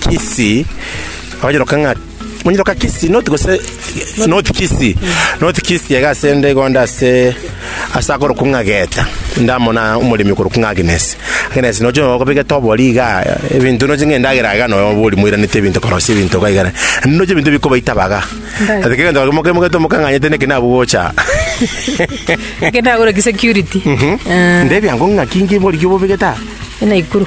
Kisii, abanyeroka ng'a abanyeroka Kisii not gose not Kisii not Kisii iga ase ende igo ande ase ase akorokwa ng'a Geta ndamona omoremi okorokwa ng'a Agnes Agnes noche nonya okobegete obori igaa ebinto noche ng'a endagera iga nonya obori moiranete ebinto korosia ebinto iga igare naende noche ebinto bikobaita baga ase kera egento moke mogete omokang'anyete naki nabwo gocha Ekero nagoreti security. Ndebi ango ng'a ki nki bori ki obobegete aa. Naikuru.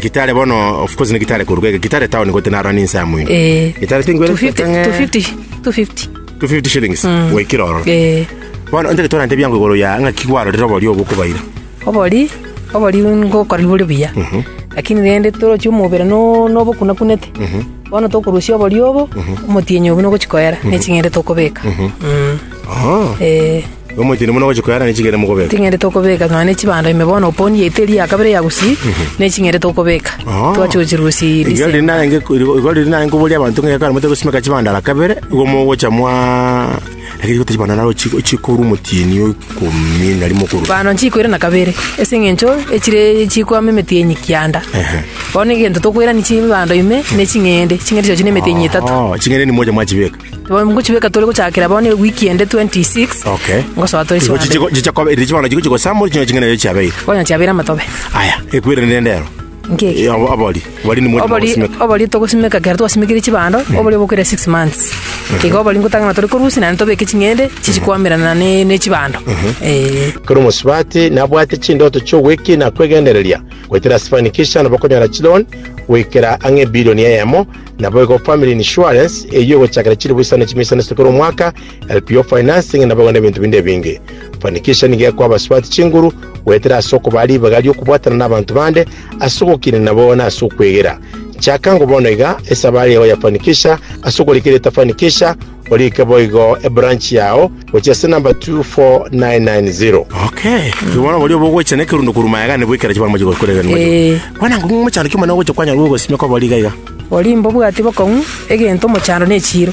Gitare bono of course ne Gitare koruga iga Gitare town gotee narora ninse amo ime Eh, Gitare tingwere 250 ng'e- 250 250 250 shillings goikira ororo Eh, bono ntere torante biango igoro ya ng'a kigwarorire obori obo okobaira obori obori ngokora bore buya lakini rende torochia omobere no- nobokunakunete bono tokorusia obori obo omotienyi obo nogochikoera neching'ende tokobeka Mm. Aha. Eh, Omocheni buna gochi koyara ne chigere mokobeka. ting'ende tokobeka nonya ne chibando ime bono oponi yaito eria ya kabere ya gusii ne ching'ende tokobeka Ah. twache gochirusia Igari December. riri narenge igari riri narenge koboria abantu ng'e kare mote gosimeka chibanda la kabere igo mogocha mwa lakini gote chibanda naro chiko chikoru motieni okomi nari mokuru. bano nchikwire na kabere ase eng'encho echire chikwama emetienyi kianda Ehe. bono egento tokwerani chibando ime ne ching'ende ching'ende chiacho ne emetienyi etato Oh, chingere ni moja mwachibeka. Bono ngochibeka tore gochakera bono ewiki ende 26. Okay. Ngosoa tore Chigo- chigo- chigo- chigo- kobe- chigo- chigo- chigo- samori ching'ana ching'ana eyo chiabeire Bono chiabera amatobe. aya ekwire nende ero Nkeki. Abo- abori bori ni mwete Obori mogosimeka. obori togosimeka kera twasimekire chibando obori obokire 6 months. Igo obori ngotangana tore korusi na tobeke ching'ende chichikwamerana ne ne chibando. Eh. kero omosubati nabwate chindoto chi'ogwekina kwegendereria goetera sifanikisha nabo okonyora chilon goikera ang'e ebilioni eyemo Naboigo family insurance eyio egochakera chilifu isano chimia isano ase kera omwaka, LPO financing naboigo nebinto binde ebinge. Fanikisha nigo ekoa abasubati chinguru goetera ase okobaa ribaga ri'okobwatana nabanto bande ase ogokina nabo na ase okwegera. Chaka ngo bono iga esabari yao ya Fanikisha ase okorika erieta Fanikisha, Orike boigo ebranch yao gochia ase number 24990. Okay. Ki bono boria bogocha nekerundo korwa mayagani bwekera chibara moche gokora egeni moche. Eh. Kwana ngo mochando kimana ogocha kwanyara gogosimia kwa bori gaiga. Oria mbobwati bokong'u egento mochando ne chiiro,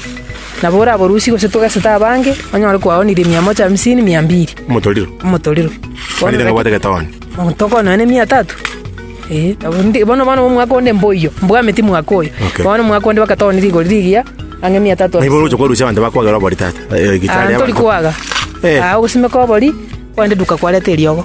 nabo oraborusie gose togesete abange, onyore kwaonirie mia moja hamsini, mia mbiri. Motoriro. Omotoriro. Farida ngabwate getoni. Mogotoka onoe ne mia tatu. Ee, nabo ndi- bono bono omwaka onde mboiyo, mbwameti mwaka oyo. Okay. Bono omwaka onde bagatogonia rigori rigiya, ang'e mia tatu. Naibo oroche kwarusia abanto bakwagera obori tata. Eh, Ah, gitari ntori abanto. kwaga. Eh. Ah, ogosimeka obori, kwende duka kwareta eriogo.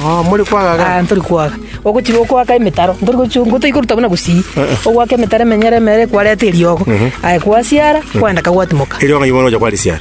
Oh, muri kwagaga. Ah, ntori kwaga. Ogochi okwaka emetaro, ntori gochi ngotoikoruta buna gusii. Eh. Okwaka emetaro emenyere emere kwareta eriogo. Aye kwasiara, kwenda kagwatimoka. Eriogo naibo oroche kwarisia.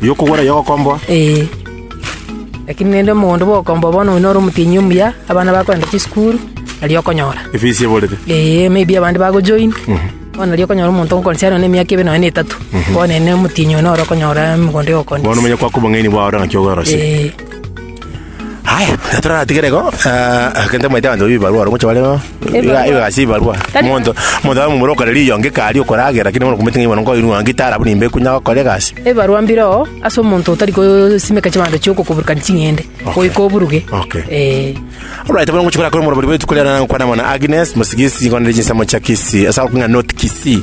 Y'okogwera y'ogokomboa. Ee. Lakini rende omogondo bw'ogokomboa bono oino ore omotienyi omuya, abana bakorenta chisukuru, nari okonyora. Efisi eborete. Ee, maybe abande bagojoin, bono nari okonyora omonto ogokora siaro na emiaka ebe nonye na etato, bono ere na omotienyi oino ore okonyora omogondo Bono y'ogokomboa. omanye kwakwa obong'aini bwao ore ng'aki ogorosia. Ee. Haya, toratigere igo, ah, kente mwaite abanto babia ebibarua aro, moche bare iga Ebibarua. iga ase ebibarua. Tari- Omonto omonto abe momura okare riongo eke aria okore age, lakini bono okomete ng'a ibono nkoinwa ng'a ngitara buna imbe ekunya gokora egasi. ebarwa mbireo ase omonto otari kosimeka chibanto chio okokoburukani ching'ende goika oburuge Okay. Eh, Alright, bono ngochikora kore morobori bwetu kore na kwana mwana Agnes, mosigisi ngone jinsa mocha kisi. Asa kung'a not kisi.